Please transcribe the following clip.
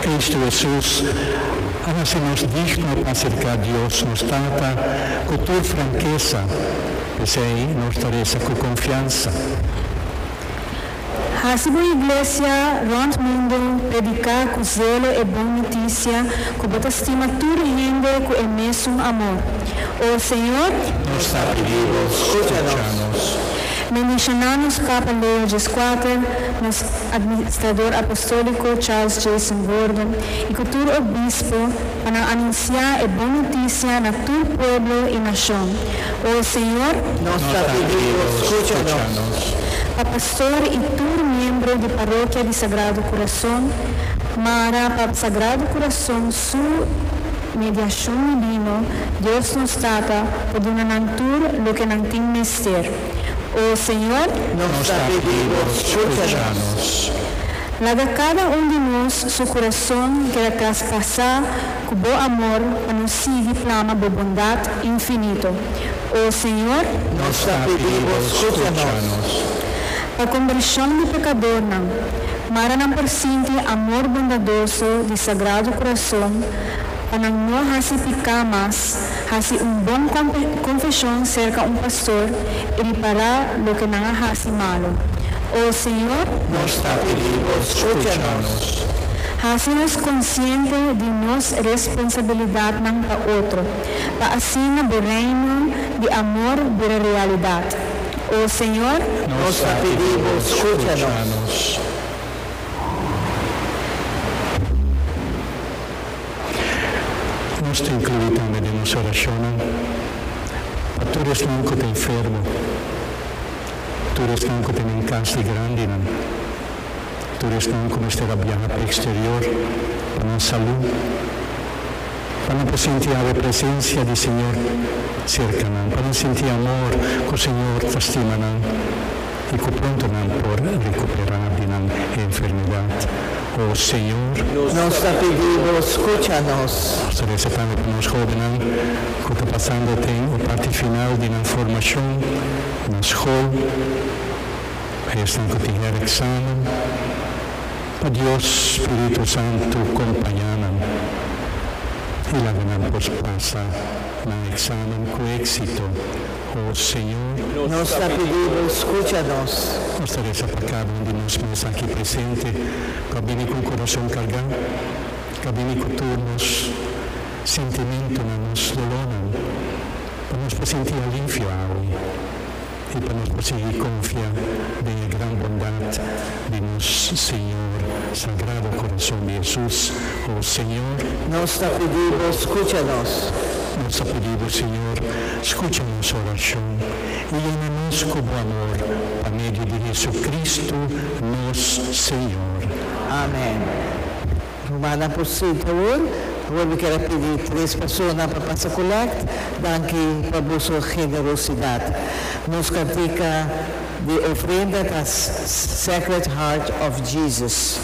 Cristo Hesus a hasi nos digno pa acerca Dios nos Tata cu tur frankesa, p'esei nos ta reza cu confiansa. Hasi bo iglesia rond mundo predica cu zelo e bon notisia cu bo ta stima tur hende cu e mesun amor. O Señor, nos ta pidibo, scucha nos. Meneshana nos Papa Leo Djiskuater, nos Administrador Apostolico Charles Jason Gordon y cu tur Obispo pa nan anuncia e bon noticia na tur pueblo y nacion. O Señor, nos ta pidibo, scucha nos. Pa Pastor y tur miembro di Parokia di Sagrado Curazon, Mara pa Sagrado Curazon, Su mediashon a bino, Dios nos Tata, pa duna nan tur loke nan tin mester. O Señor. Nos ta pidi Bo, scucha nos. Laga cada un di nos su curason keda traspasá cu Bo amor pa nos sigui plama Bo bondad infinito. O Señor. Nos ta pidi Bo, scucha nos. Pa kombershon di pekadornan, maranan por sinti amor bondadoso di Sagrado Kurason pa nan no hasi piká mas, hasi un bon konfeshon serka un pastor i ripará loke nan a hasi malu. O Señor. Nos ta pidi Bo skucha nos. Hasi nos konsiente di nos responsabilidatnan pa otro, pa asina Bo Reino di amor bira realidat. O Señor. Nos ta pidi Bo scucha nos. Nos ta inclui tambe den nos oracionnan pa tur esnan cu ta enfermo, tur esnan cu tenen cas di grandinan, tur esnan cu mester a biaha pa exterior pa nan salud. Pa nan por sinti awe presencia di Señor cerca nan, pa nan sinti amor cu Señor ta stima nan y cu pronto nan por recupera di nan enfermedad. O Señor. Nos ta pidi Bo scucha nos. Nos ta reza tambe pa nos hobennan cu ta pasando den e parti final di nan formacion na school, esnan cu tin herexamen. Pa Dios Spiritu Santu kompañá nan i laga nan por pasa nan eksamen ku éksito, o Señor. Nos ta pidi Bo skucha nos. Nos ta resa pa kada un di nos mes aki presente ku a bini ku un kurason kargá, ku a bini ku tur nos sentimentunan, nos dolónan, pa nos por sinti alivio awe. i pa nos por sigui konfia den e gran bondat di nos Señor Sagrado Korason di Hesus, O Señor. Nos ta pidi Bo skucha nos. Nos ta pidi Bo, Señor, skucha nos orashon i yena nos ku Bo amor, pa medio di JesuCristu nos Señor. Amen. Rumana por street awor. Awor mi ker a pidi tres persona pa pasa collect. Danki pa boso generosidad. Nos cantica di ofrenda ta Sacred Heart of Jesus.